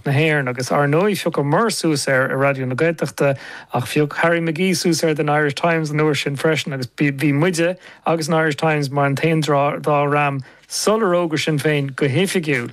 na hÉireann, agus ár ndóigh phiocamar suas air i Raidió na Gaeltachta, ach phioc Harry McGee suas air don Irish Times an uair sin freisin, agus bhí muide agus an Irish Times mar an t-aon dá dhream sular fhógair Sinn Féin go hoifigiúil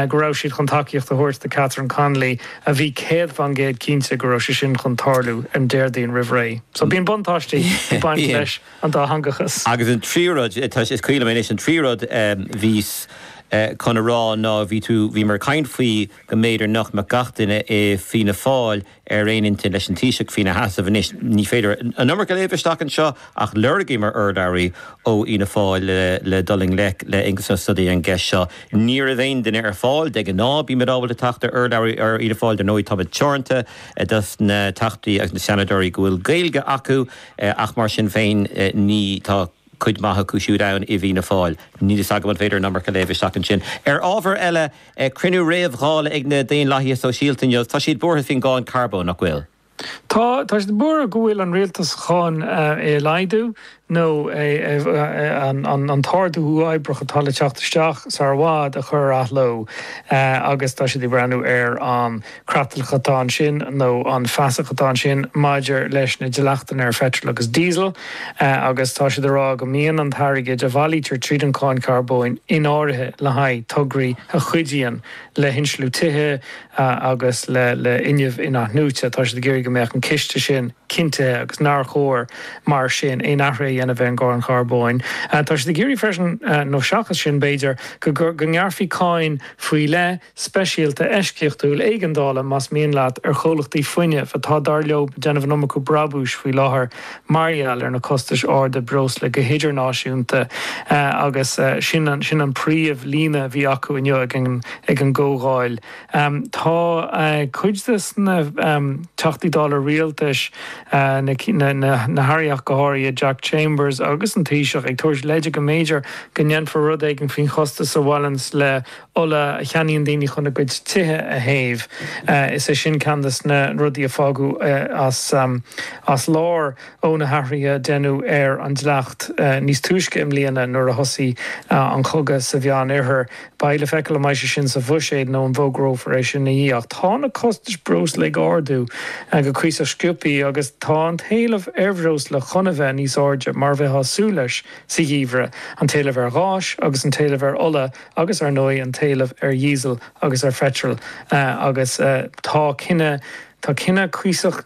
go raibh siad chun tacaíocht a thabhairt do Catherine Connolly a bhí céad fán gcéad cinnte go raibh sé sin chun tarlú an Déardaoin roimh ré. So bíonn buntáistí ag baint leis. an dátheangachas. Agus an tríú rud, scaoil liom anois, an tríú rud a bhíos chun a rá ná bhí tú, bhí muid ag caint faoi go mb'fhéidir nach mbeadh gach duine i Fianna Fáil ar aon intinn leis an Taoiseach faoina sheasamh anois. Ní féidir an iomarca a léamh isteach anseo ach lorgaíomar urlabhraí ó Fhianna Fáil le dul i ngleic le Aengus Ó Snodaigh ar an gceist seo. Ní raibh aon duine ar fáil. De ghnáth bímid ábalta teacht ar urlabhraí ó Fhianna Fáil, dar ndóigh táimid teoranta i dtaobh na dTeachtaí agus na Seanadóirí go bhfuil Gaeilge acu. Ach mar sin féin, ní, tá cuid maith acu siúd ann i bhFianna Fáil. Níl fhios agam an féidir an iomarca a léamh isteach ansin. Ar ábhar eile, cruinniú réamh-Dhála ag na Daonlathaithe Sóisialta inniu. Tá siad buartha faoin gcáin carbóin, nach bhfuil? Tá, tá siad buartha go bhfuil an rialtas chun é a laghdú, nó é, an t-ardú uathoibríoch atá le teacht isteach sar i bhfad a chur ar athló agus tá siad ag breathnú ar an creatlach atá ansin nó an fasach atá ansin maidir leis na dleachtanna ar pheitreal agus díosal agus tá siad ag rá go mbíonn an t-airgead a bhailítear tríd an cháin charbóin in áirithe le haghaidh tograí a chuidíonn le hinsliú tithe agus le fuinneamh in-athnuaite. Tá siad ag iarraidh go mbeadh an ciste sin cinntithe agus nár chóir mar sin aon athruithe a dhéanamh ar an gcáin charbóin. Tá siad ag iarraidh freisin, nó seachas sin b'fhéidir, go ngearrfaí cáin faoi leith, speisialta eisceachtúil éigeandála, más mian leat, ar chomhlachtaí fuinnimh, atá, dar leo, ag déanamh an iomarca brabúis faoi láthair mar gheall ar na costais arda breosla go hidirnáisiúnta agus sin an príomhlíne a bhí acu inniu ag an gcomhdháil. Tá cuid de na Teachtaí Dála Rialtais, na hAirí ach go háirithe, Jack Chambers agus an Taoiseach, ag tabhairt leide go mb'fhéidir go ndéanfar rud éigin faoin chostas a bhaineanns le ola a cheannaíonn daoine chun a gcuid tithe a théamh, is é sin ceann de na rudaí a fágadh as lár ó na hathruithe a deineadh ar an dleacht níos túisce i mbliana nuair a thosaigh an cogadh sa Mheánoirthear. Beidh le feiceáil an mbeidh sé sin sa bhuiséad nó an bhfógrófar é sin ina dhiaidh ach tá na costais breosla ag ardú go cuíosach sciobtha agus tá an t-éileamh ar bhreosla chun a bheith níos airde mar a bheifeá ag súil leis sa gheimhreadh, an t-éileamh ar ghás agus an t-éileamh ar ola agus ar ndóigh an t-éileamh ar dhíosal agus ar pheitreal, agus tá cinneadh, tá cinneadh cuíosach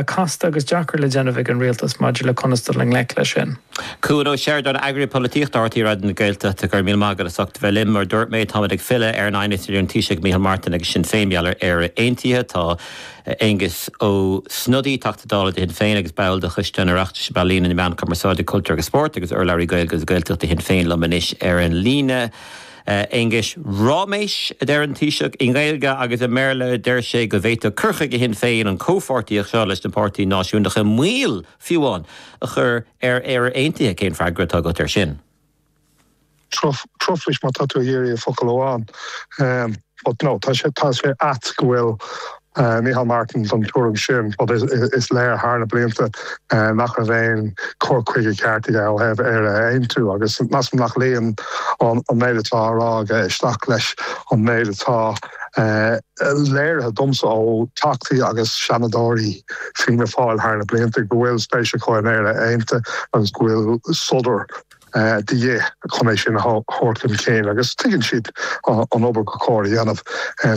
casta agus deacair le déanamh ag an rialtas maidir le conas dul i ngleic leis sin. Cuan Ó Seireadáin, Eagraí Polaitíochta RTÉ Raidió na Gaeltachta Go raibh míle maith agat as ucht bheith linn. Mar a dúirt mé, táimid ag filleadh ar an aighneas idir an Taoiseach Micheál Martin agus Sinn Féin mar gheall ar Éire Aontaithe. Tá. Aengus Ó Snodaigh, Teachta Dála do Shinn Féin agus ball de Choiste an Oireachtais um Ealaíona, na Meáin, Cumarsáid, Cultúr agus Spórt agus urlabhraí Gaeilge agus Gaeltachta do Shinn Féin liom anois ar an líne. Aengus, Ráiméis, a deir an Taoiseach i nGaeilge agus i mBéarla. Deir sé go bhféadfadh cur chuige Shinn Féin an comhpháirtíocht seo leis na páirtithe náisiúnacha moill, fiú amháin, a chur ar Éire Aontaithe. Cén freagra atá agat air sin? Truflais, má tá tú ag iarraidh focal amháin. But no, tá sé tá sé ait go bhfuil Micheál Martin den tuairim sin, but is léir thar na blianta nach raibh aon chur chuige ceart aige ó thaobh Éire a aontú agus measaim nach luíonn an méid atá á rá aige isteach leis an méid atá léirithe domsa ó Theachtaí agus Seanadóirí Fianna Fáil thar na blianta go bhfuil spéis acu in Éire aontaithe agus go bhfuil sodar de dhith chun é sin a thabhairt chun cinn agus tuigeann siad an obair gur chóir a dhéanamh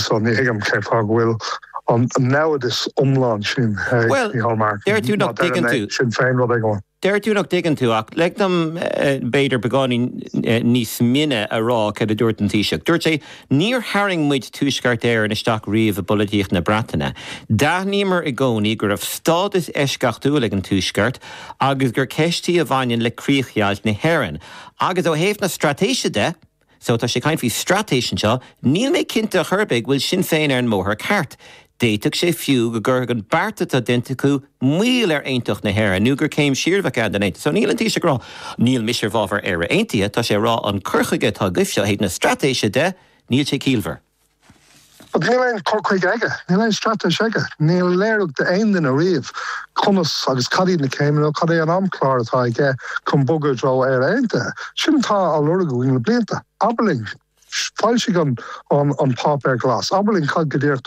so ní thuigim cén fáth go bhfuil an naimhdeas iomlán sin ag Micheál Martin. Deir tú nach dtuigeann tú. Sin féin rud éigin. Deir tú nach dtuigeann tú ach lig dom b'fhéidir beagáinín níos mine a rá céard a dúirt an Taoiseach. Dúirt sé, Níor tharraing muid Tuaisceart Éireann isteach riamh i bpolaitíocht na Breataine. D'aithníomar i gcónaí go raibh stádas eisceachtúil ag an Tuaisceart agus gur ceist í a bhaineann le críochdheighilt na hÉireann. Agus ó thaobh na straitéise de, so, tá sé ag caint faoi straitéis anseo, níl mé cinnte a chor ar bith go bhfuil Sinn Féin ar an mbóthar ceart. D'fhéadfadh sé fiú go gcuirfeadh an beart atá déanta acu moill ar aontacht na hÉireann nó gur céim siar a bheadh ann don aontacht. So, níl an Taoiseach ag rá níl mise i bhfábhar Éire Aontaithe, tá sé ag rá an cur chuige atá agaibhse ó thaobh na straitéise de, níl sé ciallmhar. But níl aon chur chuige aige, níl aon straitéis aige, níor léirigh sé d'aon duine riamh conas agus cad iad na céimeanna nó cad é an amchlár atá aige chun bogadh i dtreo Éire Aontaithe. Sin atá á lorg againn le blianta. Abair linn, foilsigh an Páipéar Glas, abair linn cad go díreach atá ann.